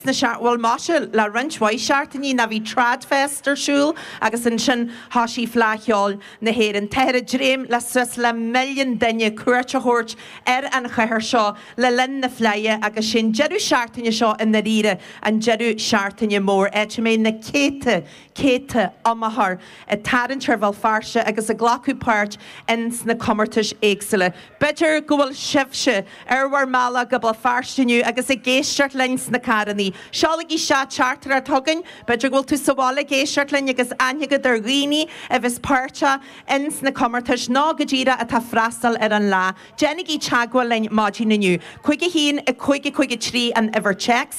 Bhuel maise, le roinnt mhaith seachtainí ná bhí an TradFest ar siúl agus ansin thoisigh Fleadh Cheoil na hÉireann. Táthar ag dréim le suas le milliún duine cuairt a thabhairt ar an chathair seo le linn na Fleidhe agus sé an deireadh seachtaine seo i ndairíre an deireadh seachtaine mór, áit a mbeidh na céadta céadta iomaitheoir ag tarraingt ar Bhéal Feirste agus ag glacadh páirt ins na comórtais éagsúla. B'fhéidir go bhfuil sibhse ar bhur mbealach go Béal Feirste inniu agus ag éisteacht linn sna carrannaí. Seolaigí isteach teachtaireacht chugainn. B'fhéidir go bhfuil tú sa bhaile ag éisteacht linn agus aithne agat ar dhaoine a bheas páirteach ins na comórtais nó go díreach atá ag freastal ar an lá. Déanaigí teagmháil linn maidin inniu. 51 53 an uimhir téacs.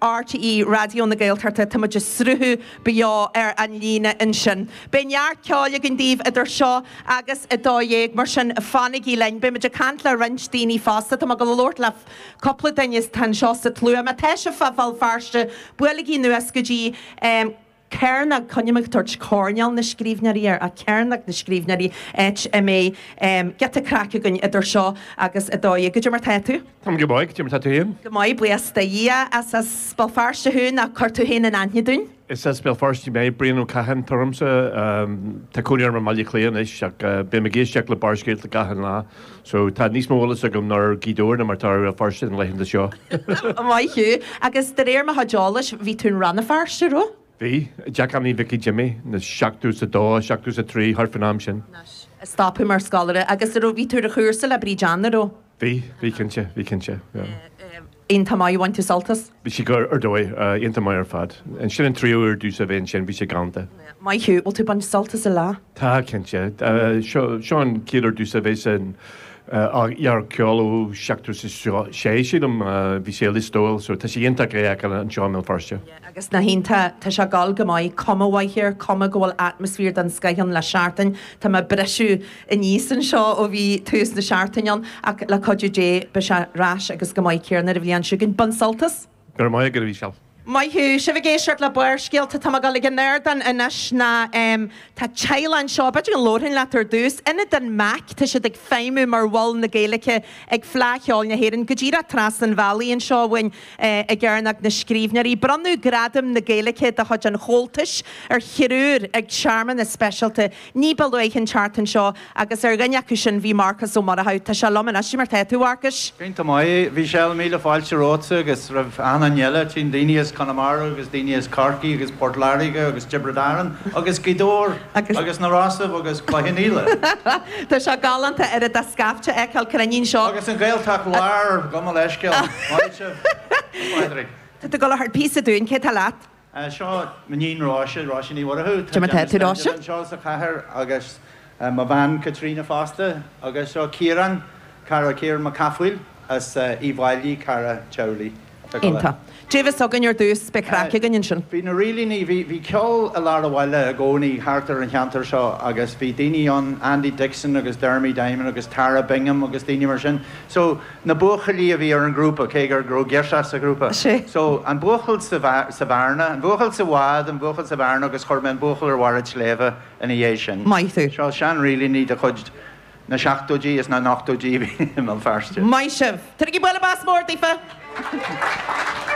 RTÉ Raidió na Gaeltachta, tá muid ag sruthú beo ar an líne ansin. Beidh neart ceoil againn daoibh idir seo agus a dó dhéag, mar sin fanaigí linn. Beidh muid ag caint le roinnt daoine fosta, tá mé ag gabháil a labhairt le cúpla duine atá anseo sa tslua. Má tá sibh fá Bhéal Feirste, buailigí anuas go dtí. céarnach, coinmheadh, toirt, coirnéal na scríbhneoirí nó, céarnach na scríbhneoirí, áit a mbeidh giota craic againn idir seo agus a dó dhéag. Goidé mar atá tú? Tá go maith. Goidé mar atá tú féin? Go maith, buíochas do Dhia. Is as Béal Feirste thú, nach ea? Cuir tú féin in aithne dúinn? Is as Béal Feirste mé, Brian Ó Catháin atá ormsa. Tá cónaí orm i mBaile Átha Cliath anois ach bím ag éisteacht le Barrscéalta gach aon lá. So, tá níos mó eolas agam anois ar Ghaoth Dobhair ná mar atá ar Bhéal Feirste na laethanta seo. Maith thú. Agus de réir mo chuid eolais, bhí tú i Rann na Feirste, raibh? Bhí. Teach Anthony Mhicí Jimmy, nó seachtó is a dó, seachtó is a trí, thart faoin am sin. Anois, stop thú mar scoláire. Agus, a raibh, bhí tú ar chúrsa le Bríd Anna, raibh? Bhí, bhí cinnte, bhí cinnte. Iontach maith. Ar bhain tú sult as. Bhí sí go, ar dóigh, iontach maith ar fad. Ansin an tríú uair domhsa a bheith ansin bhí sé galanta. Maith thú. Bhfuil tú ag baint sult as an lá? Tá, cinnte. Seo, seo an chéad uair domhsa a bheith ag an Fhleadh Cheoil ó seachtó is a sé, sílim. Bhí sé i Lios Tuathail so tá sé iontach í a fheiceáil anseo i mBéal Feirste. agus na hiontach. Tá sé ag dul go maith, cuma mhaith air, cuma go bhfuil atmaisféar den scoith ann le seachtain. Tá mé ag brisiú aníos anseo ó bhí tús na seachtaine ann ach le cuidiú Dé beidh sé ar ais agus go maith. céanna ar an bhliain seo chugainn. Bain sult as! Go raibh maith agat, a Mhícheáil. Maith thú! Tá sibh ag éisteacht le Barrscéalta. Tá mé ag dul chuig an ardán anois ná em tá teaghlaigh anseo, b'fhéidir go labharfainn leat ar dtús. Ionad an Mac, tá siad ag feidhmiú mar mhol na Gaeilge ag Fleadh Cheoil na hÉireann, go díreach trasna an bhealaigh anseo uainn. Ag Cearnóg na Scríbhneoirí. Bronnadh Gradam na Gaeilge de chuid an Chomhaltais ar thriúr ag searmanas speisialta ní ba luaithe an tseachtain seo agus ar dhuine acu sin bhí Marcas Ó Murchú. Tá sé liom anois. Goidé mar atá tú, a Mharcais. Iontach maith, a Mhíchíl. Míle fáilte romhatsa agus roimh achan nduine eile. Tchím daoine as Conamara agus daoine as Corcaigh agus Port Láirge agus Tiobraid Árann agus Gaoth Dobhair. Agus. Agus na rásaí agus cluichí na féile. Tá sé galánta a oiread de scaifte a fheiceáil cruinn anseo. Agus an Ghaeltacht Láir gabh mo leithscéal. Maith sibh, a Phádraig. Tá tú ag dul a cheol píosa dúinn, cé tá leat? Seo m'iníon Róise, Róise Ní Mhuireadhach, tá Cuma déanta teideal Róise. anseo sa chathair agus mo bhean Caitríona fosta agus seo Ciarán, cara, Ciarán Mac Cathmhaoil as Uíbh Fhailí, cara teaghlaigh. Tá. Beidh ceol againn ar dtús, beidh craic againn ansin. Bhí na rílíní, bhí, bhí ceol i lár an bhaile i gcónaí thart ar an cheantar seo agus bhí daoine ann, Andy Dixon agus Dermy Diamond agus Tara Bingham agus daoine mar sin. So, na buachaillí a bhí ar an ngrúpa, cé go raibh girseach sa ghrúpa. Sé. So, an buachaill sa, sa bhearna, an buachaill sa bhád, an buachaill sa bhearna agus chuir mé an buachaill ar bharr an tsléibhe ina dhiaidh sin. Maith thú. Seo, seanrílíní de chuid na seachtóidí is na n-ochtóidí i mBéal Feirste. Maith sibh! Tabharaigí bualadh bos mór daofa!